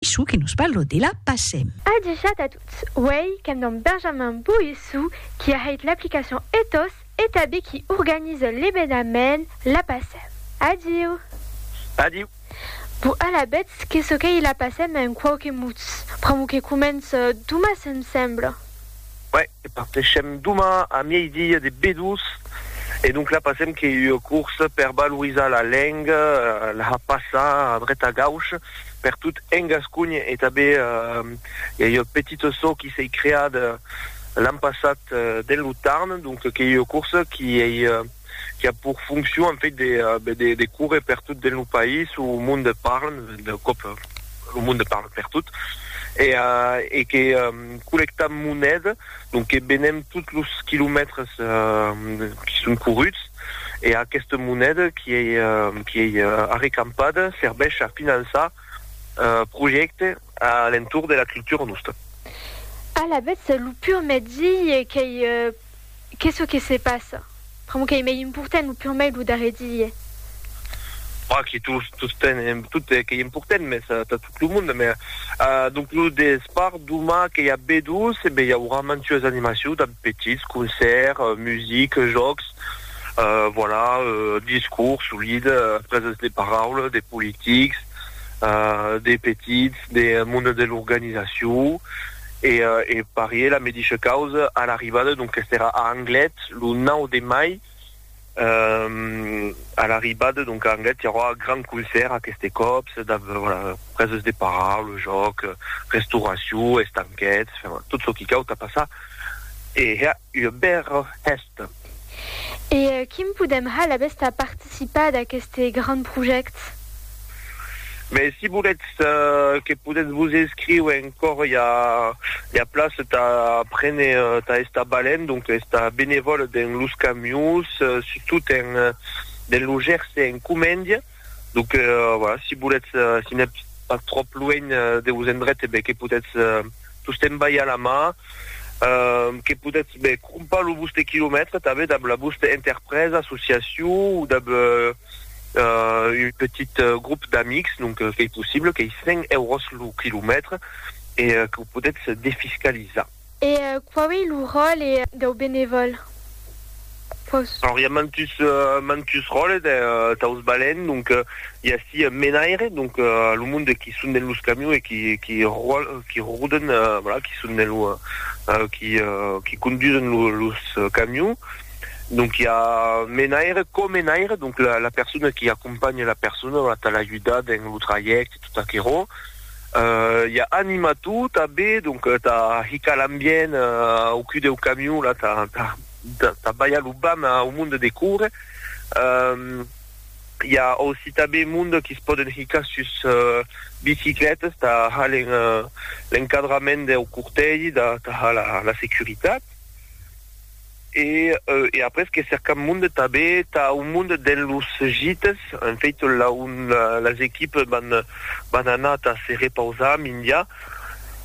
Issu que nos parlo de la Pacem. Adjusat a tot, uèi qu'èm damb Benjamin Boissou, qui a hèit l'aplicacion Ethos e tabé qui organise l'ebenament la Pacem. Adiu! Adiu! Bon, alavetz, que çò qu'ei la Pacem en quauque mots, pr'amor que comence Thomas, em semble. Uèi, E parteshem doma a miei-dia de Bedús e donc la passem que ua corsa per valorizar la lenga, la passar a dreta a gaucha per tot en Gasconha e tanben i a ua petita çò qui s'ei creada l'an passat dens lo Tarn, donc qu'ei ua corsa qui ei qui a pour fonction en fait de, euh, ben, de, de courir per tot dins lo país où le monde parle, de cop euh, le monde parle per tot, et, euh, et que euh, collectam moneda, donc que benem tots los quilomètres euh, qui sont courus, et aquesta moneda qui est, euh, qui est euh, arrecampada serveix a finançar euh, projectes à l'entour de la culture nostra. Alavetz, lo pur mètzi qu'ei euh, Qu'es çò que se passa? Pr'amor qu'ei mei important lo purmei lo darrer die. Pas que tot, tot qu'ei important, mès tà tot lo monde. Mès donc lo despart doma que i a B-12, e ben i aurà mantues animacions damb petits, concèrt, music, jòcs, voilà, discors solid, preses de paraula de politics, de petits, de monde de l'organizacion E e parié la medisha causa a l'arribada, donques era a Anglet lo 9 de mai, e a l'arribada donc a Anglet i aurà gran concèrt aqueste còp, se dab voilà preses de paraula, jòc, restauracion, estanquets, enfin tot çò qui cau tà passar e hèr ua bèra hèsta. E quim podem hal abest a participar d'aqueste grand project? Mès si voletz que podetz vos inscriu encor i a plaç tà prene tà estar balent, donc estar benevòl dens los camions, sustot dens lo Gerse en Comèndia. Donc euh, voilà, si voulètz, euh, si n'êtes pas trop loin euh, de vos endrets, eh ben, que potètz euh, tostemps balhar la mà, euh, que potètz ben, crompar lo vostre quilomètre també dab la vostra interpresa, associació o dab euh, euh, un petit euh, groupe d'amics, donc euh, qu'ei possible, qu'ei 100 euros lo quilomètre e euh, que ho potètz defiscalizar. E quau ei lo ròle dau benevòl? Quaus. Alors i a mantus mantus ròles daus balèns, donc i a ací un menaire, donc lo monde qui son dens los camions e qui qui ròl qui roden voilà qui son dens lo qui qui condusen lo los camions, donc i a menaire, co-menaire, donc la la persona qui acompanha la persona, voilà tà l'ajudar dens lo trajècte tot aquerò. Ia anima tu ta be donc ta hica l'ambient au cul deu camion la ta ta ta baia lo bam au monde de coure ia aussi ta be monde qui se poden hica sus bicicletes ta halen l'encadrament deu cortègi da ta ha la securitat. E e après que cercam monde tabé tà un monde dens los gites, en fait là on las equipes van van anar tà se repausar mindia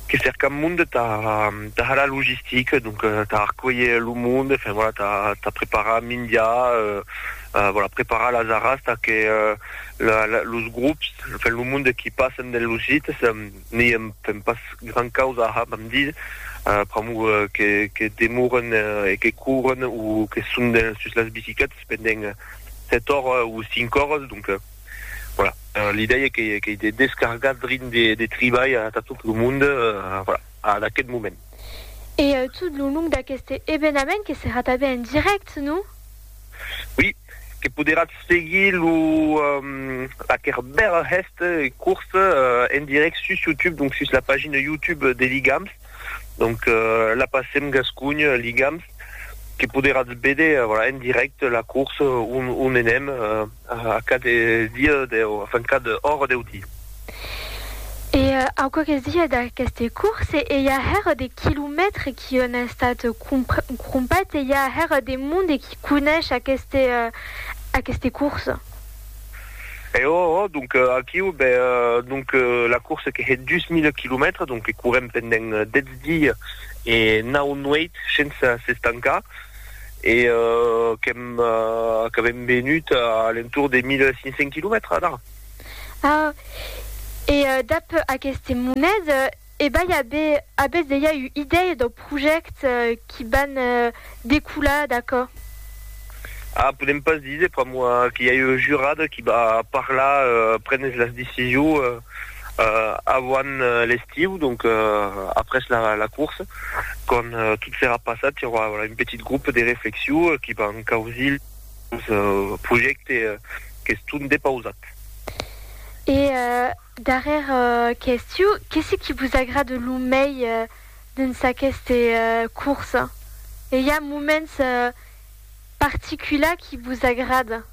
que cercam monde tà tà har la logistique donc tà arcuelher lo monde enfin voilà tà tà preparar mindia euh voilà preparar las arras tà que la la los grops enfin lo monde qui passen dens los gites N'i èm pas gran causa a hab amb dir, pr'amor que demoren e que couren o que son sus las bicicletas pendent sèt oras o cinc oras, donc voilà, l'idèia qu'ei de descargar drin de tribalh atà tot lo mond, voilà, ad aquest moment. E tot lo long d'aqueste evenament que serà tanben en dirèct, non? Oui, que poderatz seguir lo aquer bèl hèst curs en direct sus YouTube, donc sus la pagina YouTube de Ligams, donc la passem Gascunh Ligams, que poderatz véder en direct la curs on enèm. A cada dia deu enfin cada ora deu di. E au quauques dies d'aqueste course e i a hèr de quilomètres qui on a estat crompat e i a hèr de monde qui conesh aqueste aqueste course. E oh oh donc aquiu be donc la course que hè dus mile quilomètres donc que courem pendent dètz dies e nau nuèits shensa s'estancar. e qu'èm qu'avèm venut a l'entorn de 1.500 quilomètres d'ara. Ah! E dab aqueste monet, ebai abe, abètz dejà ua idèia dau projèct qui van decolar d'aquò? Ah, podèm pas díser, pr'amor qu'i a ua jurada qui va parlar, prenes las decisions. Avant l'estiu, donc après la course, quand tot serà passat, i aurà un petit groupe de reflexion qui van causir los projèctes qu'estón depausat. E darrèr qu'estiu, que se qui vos agrada lo mei dens aqueste course? E i a moments particulars qui vos agrada?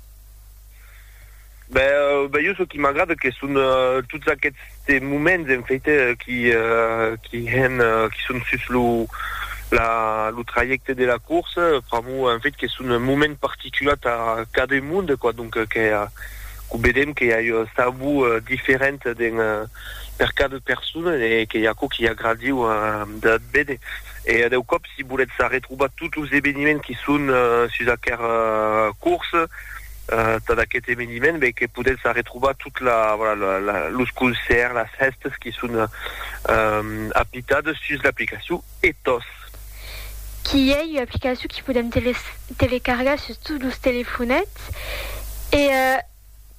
Ben jo çò qui m'agrada que son tots aquests moments en faite qui qui hèn qui son sus lo la lo trajècte de la corsa pr'amor en fait que son moments particular tà cada monde quoi donc que que vedèm que i a ua sabor diferent den per cada persona e que i a aquò qui agradiu de véder e deu còp si volètz arretrobar tots los eveniments qui son sus aquera corsa Tad aquest eveniment ben que podètz arretrobar tot la voilà la los concèrts, las hèstes qui son apitades sus l'aplicacion Ethos. Qui ei ua aplicacion qui podèm telecargar sus tots los telefonets e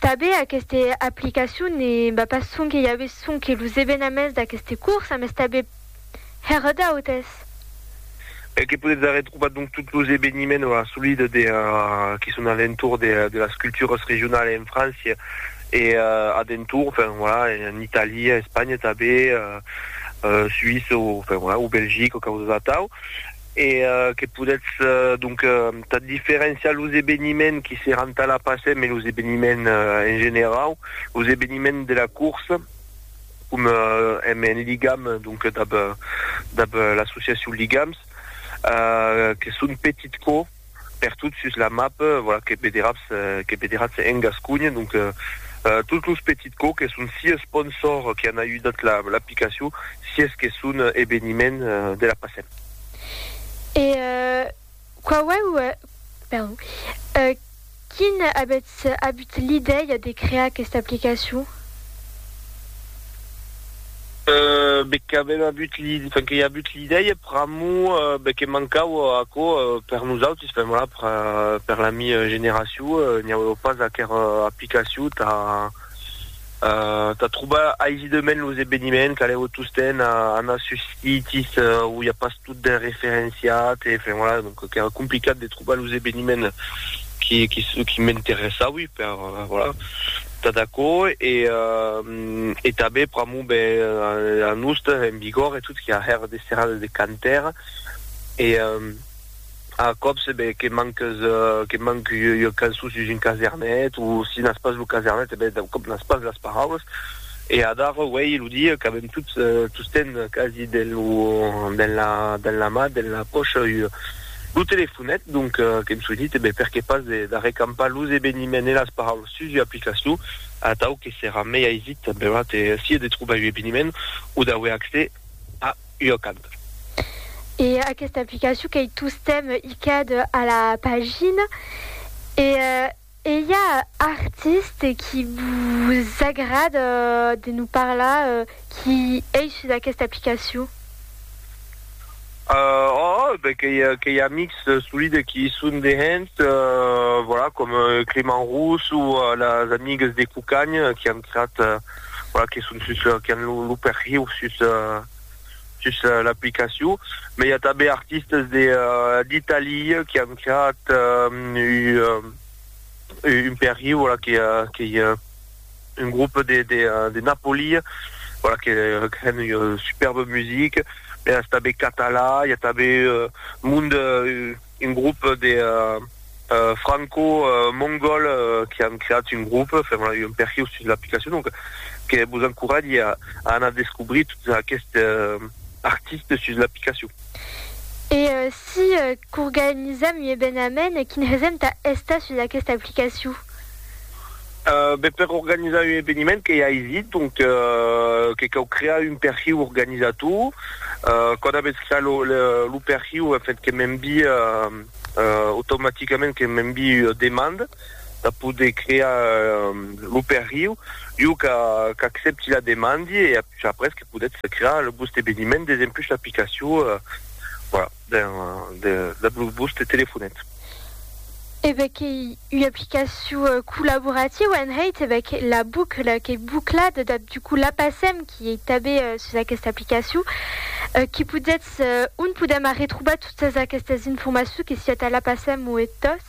tanben aquesta aplicacion ne va pas sonque i a ve sonque los evenaments d'aqueste cors, mas tanben Hèr d'autes. E que podetz arrè trobar donc tots los eveniments o assolida de qui son a l'entorn de las culturas regionalas en França e a d'entorn, enfin voilà, en Itàlia, Espanha tanben, Suïssa o enfin voilà, o Belgica o causas atau. E que podetz donc tà diferenciar los eveniments qui seràn tà la Pasèm e los eveniments en generau, los eveniments de la corsa. com èm en ligam donc dab dab l'associacion Ligams que son petit co per tot sus la map voilà que vederatz que vederatz en Gasconha donc tots los petits co que son sia sponsors qui an ajudat l'aplicacion sies que son eveniment de la passem. E Quauèu, perdon, quin avètz avut l'idèia de crear aquesta aplicacion? Be qu'avèm avut l'i, enfin, que i avut l'idèia pr'amor, be que mancava aquò per nosautis, enfin, voilà, per, per la mi generacion, n'i auèu pas aquera aplicacion tà, Tà trobar aisidament los eveniments, calèu tostemp anar sus sites où i a pas tot ben referenciat, enfin voilà, donc qu'èra complicat de trobar los eveniments qui m'interessaui per, voilà, tà d'aquò e tanben pr'amor ben a nos, en Bigòrre e tot, qu'i a hèr de serrades de cantèr e A còps, ben, que manques, que manc ua cançon sus un casernet, o si n'as pas lo casernet, e ben, d'un còp n'as pas las paraulas. E adara, uèi, lo dia qu'avèm tots, tostemp quasi, dens lo, dens la, dens la man, dens la pòcha, ua, lo telefonet, donc, qu'èm soinit, e ben, perqué pas de, d'arrecampar los eveniments e las paraulas sus ua aplicacion, atau que serà mei aisit, benlèu, de, sia de trobar un eveniment, o d'auer accès a. lhocant. E aquesta aplicacion qu'ei tostemp hicad a la pagina e ei a artiste qui vos agrad de nos parlar qui ei sus aquesta aplicacion? Oh, ben qu'ei amics solide qui i son de hènt, voilà, com Clément Rousse o las amigues de Cucagn qui an creat voilà, que son sus, qui an lo, lo perhiu sus, sus l'aplicacion. Mai i a tanben artistes de, d'Italia qui an creat un, un perhiu, voilà, que, que i a un groupe de, de, de Napoli, voilà, que, que an un superbe musique. Mai es tanben catalan, i a tanben monde, Un grop de franco-mongòl que an creat un grop, fèron un perhiu sus l'aplicacion, donc que vos encoratge a anar descobrir tots aquests artistes sus l'aplicacion. E si qu'organizam un evenament, quin hesèm tà estar sus aquesta aplicacion? Ben per organizar un eveniment qu'ei aisit, donc que cau crear un perhiu organizator, quand avètz creat lo perhiu en fait que m'envie automaticament que m'envie ua demanda de poder crear lo perhiu, jo qu'accepti la demandi e après que podètz crear lo vòste eveniment desempús l'aplicacion, voilà. Ben, dab los bus de telefonet. E ben qu'ei ua aplicacion collaborativa en hèit, e ben que la bucla qu'ei buclada, dab du coup la passem, qui ei tabé sus aquesta aplicacion, qui podetz, on podem arretrobar totas aquestas informacions que siá tà la passem o ethos?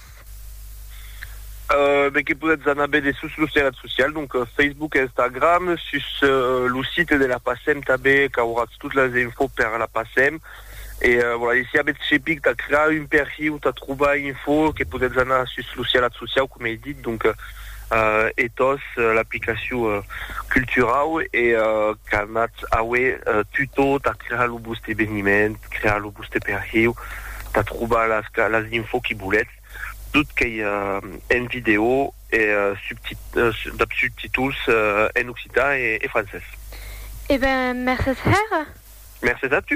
E ben que podetz anar bède sus los terrat socials, donc Facebook, Instagram, sus lo site de la passem tabé qu'auratz tot las infos per la passem, e voilà e si avètz cepic tà crear un perhi o tà trobar info que podètz anar sus lo sialat sociau com ei dit donc ethos l'aplicacion culturau e qu'anatz aué tutò tà crear lo voste eveniment crear lo voste perhi tà trobar las las info qui volètz tot qu'ei en vidèo e dab subtituls en occitan e francés. E ben mercés hèra. Mercés a tu.